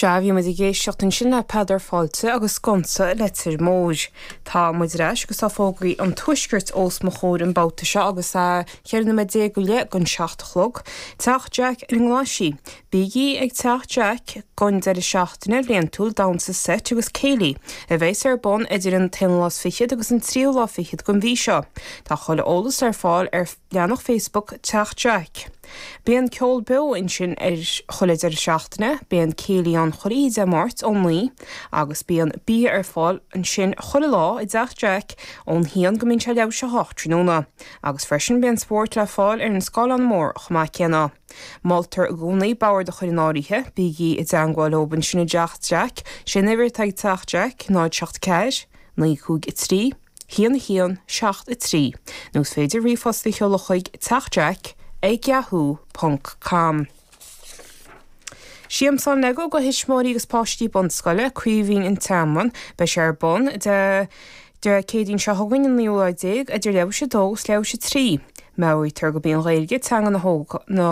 Sea, bhí muid ag éisteacht ansin le Peadar Fáilte agus Sconsa Leitir Móir. Tá muid ar ais agus tá fógraí an tuaiscirt os mo chomhair an babhta seo agus a 14 noiméad le gan seacht a chlog. Teach Jack ar an nGlaiseach. Bígí ag Teach Jack don deireadh seachtaine bliantúil damhsa seit agus céilí, a bheas ar bun idir an t-aonú lá is fichead agus an tríú lá fichead den mhí seo. Tá chuile eolas ar fáil ar. leathanach Facebook Teach Jack. Bíonn ceol beo ansin chuile dheireadh seachtaine, bíonn céilí ann chuile Dé Máirt ó naoi agus bíonn bia ar fáil ansin chuile lá i dTeach Jack ón haon go mbíonn sé leathuair théis a hocht tráthnóna agus freisin bíonn spóirt le fáil ar an scáileán mór chomh maith céanna. Moltar i gcónaí boird a chur in áirithe, bígí i dteangmháil leob ansin i dTeach Jack, sé an uimhir atá ag Teach Jack, 074 953. 1101 73 nó is féidir ríomhphost a sheoladh chuig Teach Jack ag yahoo ponc com. Siamsán Lego go thuismitheoirí agus páistí bunscoile, Craoibhín An Tearmann. Beidh sé ar bun Dé Céadaoin seo chugainn an 19ú lá idir leathuair théis 2 agus leathuair théis 3. Meabhraítear gurb í an Ghaeilge teanga na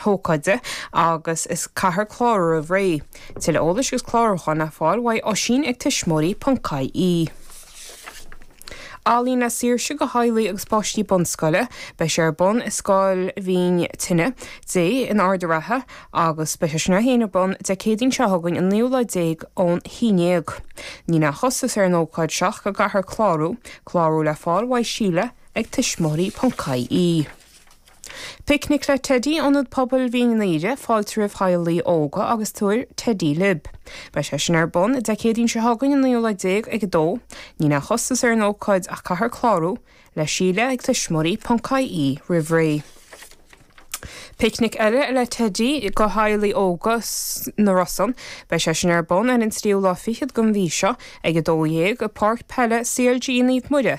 hócáide agus caithfear clárú roimh ré. Tuilleadh eolais agus clárúcháin le fáil uaidh oisín ag tuismitheoirí ponc ie. Ealaíona Saoirse do theaghlaigh agus páistí bunscoile. Beidh sé ar bun i Scoil Mhín Tine Dé in Ard an Rátha agus beidh sé sin é féin ar bun Dé Céadaoin seo chugainn an naoú lá déag ón haon déag. Níl aon chostas ar an ócáid seo ach go gcaithfear clárú. Clárú le fáil uaidh Síle ag tuismitheoirí.ie. Picnic le Teidí, Ionad Pobail Mhín an Aoire, Fáilte roimh theaghlaigh óga agus tugaigí teidí libh. Beidh sé sin ar bun Dé Céadaoin seo chugainn an 19 lá ag 2:00. Níl aon chostas ar an ócáid ach caithfear clárú le Síle ag tuismitheoirí ponc ie roimh ré. Picnic eile le Teidí do theaghlaigh óga sna Rosann. Beidh sé sin ar bun ar an tríú lá fichead den mhí seo ag 12:00 i bpáirc peile CLG Naomh Muire,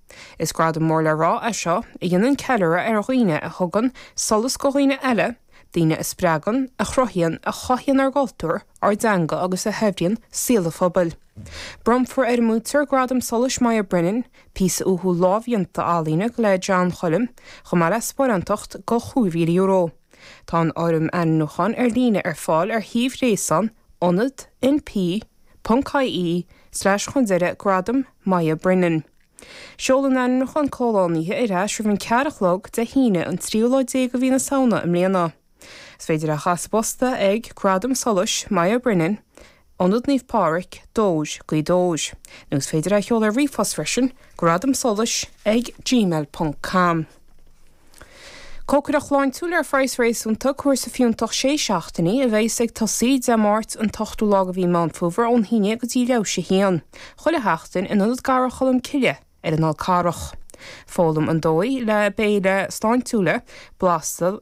Is gradam mór le rá é seo a dhéanann ceiliúradh ar dhaoine a thugann solas go dhaoine eile, daoine a spreagann, a chruthaíonn, a chothaíonn ár gcultúr, ár dteanga agus a shaibhríonn saol an phobail. Bronnfar ar an mbuaiteoir Gradam Solais Moya Brennan píosa uathúil lámhdhéanta ealaíne le John Choilm, chomh maith le sparáintacht de chúig mhíle euro. Tá an fhoirm ainmniúcháin ar líne ar fáil ar shuíomh ghréasáin ionadnp.ie slais chun deiridh gradam. Moya Brennan. Seol an t-ainmniúchán comhlánaithe ar ais roimh an ceathair a chlog Dé hAoine, an tríú lá déag de mhí na Samhna i mbliana. Is féidir é a chur sa bposta ag, Gradam Solais, Moya Brennan, Ionad Naomh Pádraig, Dobhar, Gaoth Dobhair. Nó is féidir é a sheoladh ar ríomhphost freisin, Gradam Solais ag gmail.com. Cócaireacht shláintiúil ar phraghas réasúnta, cúrsa fiúntach sé seachtainí, a bheas ag tosaí Dé Máirt an t-ochtú lá de mhí Meán Fómhair ón haon déag go dtí leathuair tar éis a 1, chuile sheachtain, in Ionad Garraí Cholm Cille ar an Fhál Carrach. Foghlaim an dóigh le béile sláintiúil, blasta,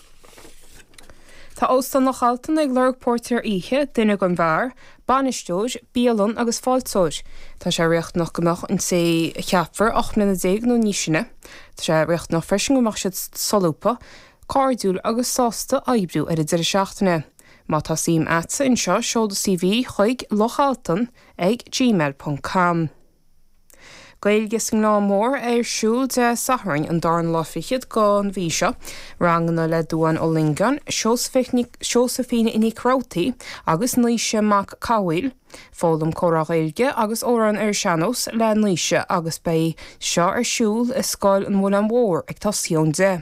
Tá Óstán Loch Altan ag lorg póirtéir oíche, duine don bheár, bainisteoir bialainne agus fáilteoir. Tá sé riachtanach go mbeadh an té a cheapfar 18 mbliana nó níos sine. Tá sé riachtanach freisin go mbeadh siad solúbtha, cairdiúil agus sásta oibriú ar an deireadh seachtaine. Má tá suim agatsa anseo seol do CV chuig, lochaltan ag gmail ponc com. Gaeilge sa nGleann Mór ar siúl Dé Sathairn an dara lá fichead den mhí seo. Ranganna le Dubhán Ó Longáin, Seosaimhín Nic Rabhartaigh agus Naoise Mac Cathmhaoil. Foghlaim Comhrá Gaeilge agus amhráin ar sean-nós le Naoise agus beidh seo ar siúl i Scoil an Mhuileann Mhóir ag tosaí ón deich.